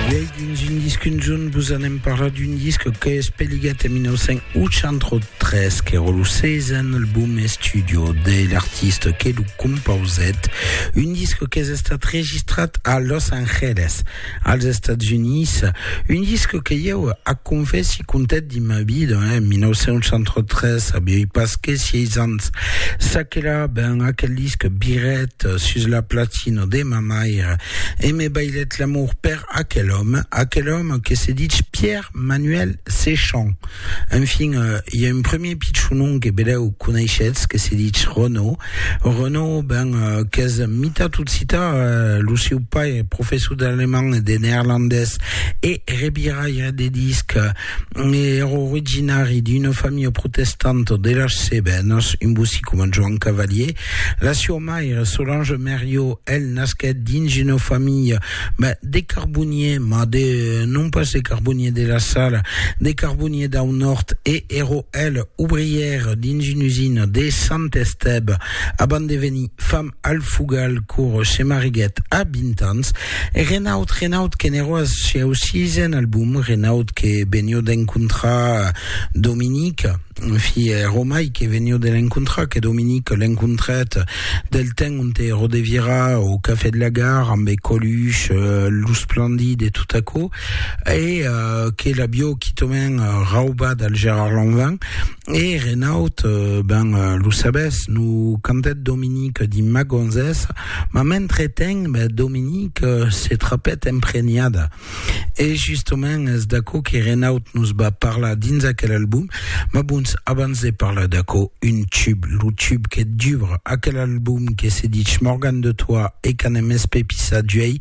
Uèi dins un disc un jorn vos anem parlar d'un disc que es peligat en 1983 qu'èra lo seizen album estudio de l'artista que lo compausèt, un disc qu'es estat registrat a Los Angeles, als Estats Units, un disc que ieu ac confèssi contat dins ma vida, en 1983 avièi pas que sièis ans, çaquelà, ben aquel disc viret sus la platina de ma maire, E me bailèt l'amor per aquel òme, aquel òme que se ditz Pierre Manuel Séchant. Enfin, i a un premier pichonon que belèu coneishetz que se ditz Renaud. Renaud, ben, qu'es mitat occità, lo seu pair, professor d'alemand e de neerlandés e rebiraire de disc, Era originari d'una familha protestanta de las Cevenas, un bossí coma Joan Cavalier, la sua maire Solange Mériot, el nasquèt dins una familha ben, de carbonier, mas de, non pas de carbonier de la Sala, de carbonier dau Nòrd e era el obrièr dins una usina de Sant Estève abans de venir fam. Al Fugal Coro se mariguèt a 20 ans e Renaud, Renaud que n'èro ath sieu sisen album, Renaud que venió d'encontrar Dominique, en fi, ère Omai que venió de l'encontrar, que Dominique l'encontrèt del temps onte ero de vira au Cafè de la Gare ambe Coluche, lo Splendid e tot aquò, e que l'avió quitament raubat al Gérard Lanvin. E Renaud, ben, lo sabes, no cantèt Dominique dins Ma gonzessa, mas mentretemps, ben, Dominique se trapèt emprenhada. E justament es d'aquò que Renaud nos va parlar dins aquel album. Mas bons, abans de parlar d'aquò, un tube, lo tube que dubra aquel album que se ditz Morgan de toi e qu'anem espepissar d'uèi,